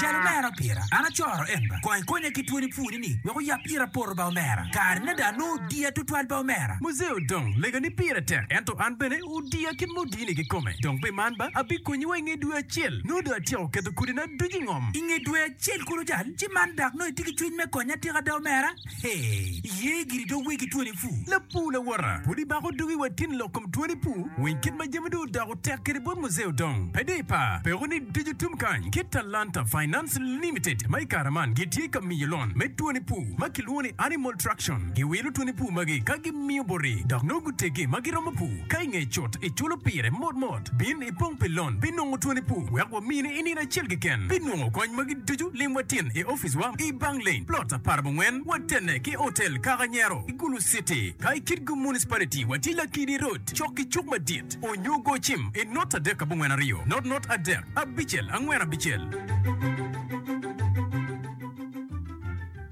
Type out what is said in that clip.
Jalo me ano pira, an acoro en ba, kong ikonya ki twoni pwoni ni wek oyab ira poto ba omera, kare ni dong anongo odiya tutwal ba omera. Muzee Odong, lega ni pire tek, ento an bene odiya kit ma odini kikome, dong pi man ba abikonyi wa inge dwe acel, nongo dong atyeko keto kudina ducu ingom. Inge dwe acel kulu jal, ci man dak nongo itye ki cwiny me konya atika ada omera? Hee, iye giri dong wegi twoni pu? Lapur lawota, pud ibako dugi wa tin lok kom twoni pu? Weny kit ma jami dong odoko tek kede bot Muzee Odong, pe dong ipa peko ni ducu tum kany ki Talanta Finance Limited ma ikare man gitye ka miyo lon me twoni pu ma kilwongo ni Animal Traction. Giwilo twoni pu magi ka gimiyo boti dok nongo guteggi ma giromo pu ka inge cut iculo pire mot mot. Bin. Ipong pi lon pi nongo twoni pu wek wamini i nino acel keken pi nongo kony magi ducu. Lim wa tin i opic wa i Banglain, Plot apar bo ngwen, watene ki Hotel Kaka Nyero i Gulu City. Ka i Kitgum Municipality, watye Lakidi Road, cok ki cuk madit, onyo go cim i not adek abongwen aryo, not not adek abicel angwen abicel.